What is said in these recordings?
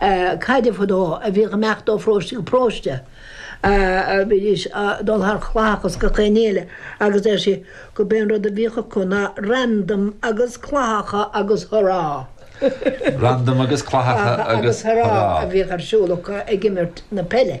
caide fadó a bhíodh ag imeacht ó pharóiste go paróiste. Bhídís a' dul thar chlathacha is gach aon ní eile agus deir sí gurb é an rud a bhíodh acu ná randam agus clathacha agus hurá! Randam agus clathacha agus hurá! a bhíodh ar siúl acu ag imirt na peile.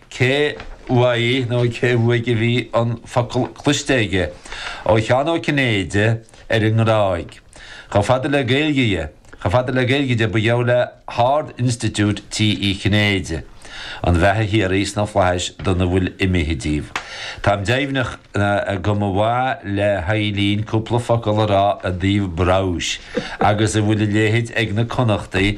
Cé uaidh nó cé uaidh a bhí an focal cloiste aige? Ó Sheán Ó Cinnéide ar an nGráig. Chomh fada le Gaeilge dhe, chomh fada le Gaeilge de, ba gheall le hArd-Institiúid tigh Uí Chinnéide an bheatha shíoraí sna Flaithis dona bhfuil imithe díobh. Táim deimhneach go mba mhaith le hEileen cúpla focal a rá i dtaobh Brous agus an bhfuil a léithid ag na Connachtaigh,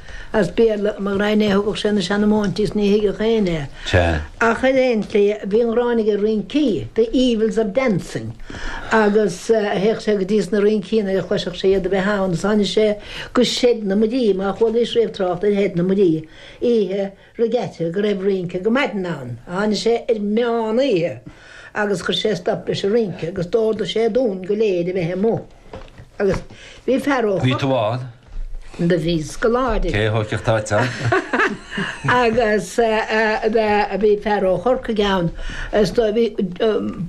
As Béarla mo ghraidhin é a thugadh sé na seanmóintí is ní thuigeadh éinne é. Ach ar aon tslí, bhí an ghráin aige ar rincí, the evils of dancing, agus théadh sé go dtí sna rincí nuair a chloisfeadh sé iad a bheith ann agus tháinig sé go Shed na Muirí, má chualaís riamh trácht ar Shed na Muirí oíche Regatta go raibh rince go maidin ann. Tháinig sé ar meán oíche agus chuir sé stop leis an rince agus d'ordaigh sé dúinn go léir a bheith amuigh agus bhí fear ó. Bhí tú ann? Do bhí scoláirí. Cé a thóigfeadh toit ann? Agus bhí fear ó Chorcaigh ann is do bhí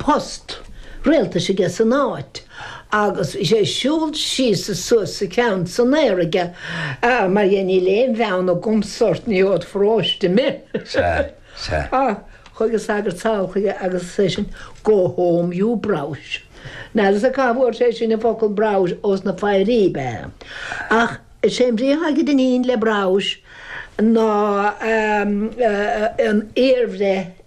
post rialtais aige san áit. agus bhí sé ag siúl síos is suas is a cheann san aer aige mar dhea níl aon bheann agamsa ort ní ód pharóiste mé. Sea, sea. Á, chuaigh an sagart sall chuige agus ar seisean Go home you browse. Níl a fhios cá bhfuair seisean an focal browse os na fairí be. Ach is é an bhrí atá againne le browse ná an iar-bhreith.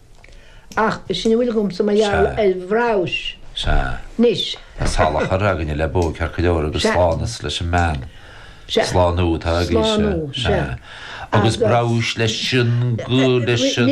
Ach b'shin a bhfuil agamsa mar gheall ar bhreabhais. Sea. Anois. Tá salachar againne le bó cearcaileora agus slánas leis an mbean. Sea. Slánú atá againne. Slánú. Sea. Agus breabhais leis sin go leis an.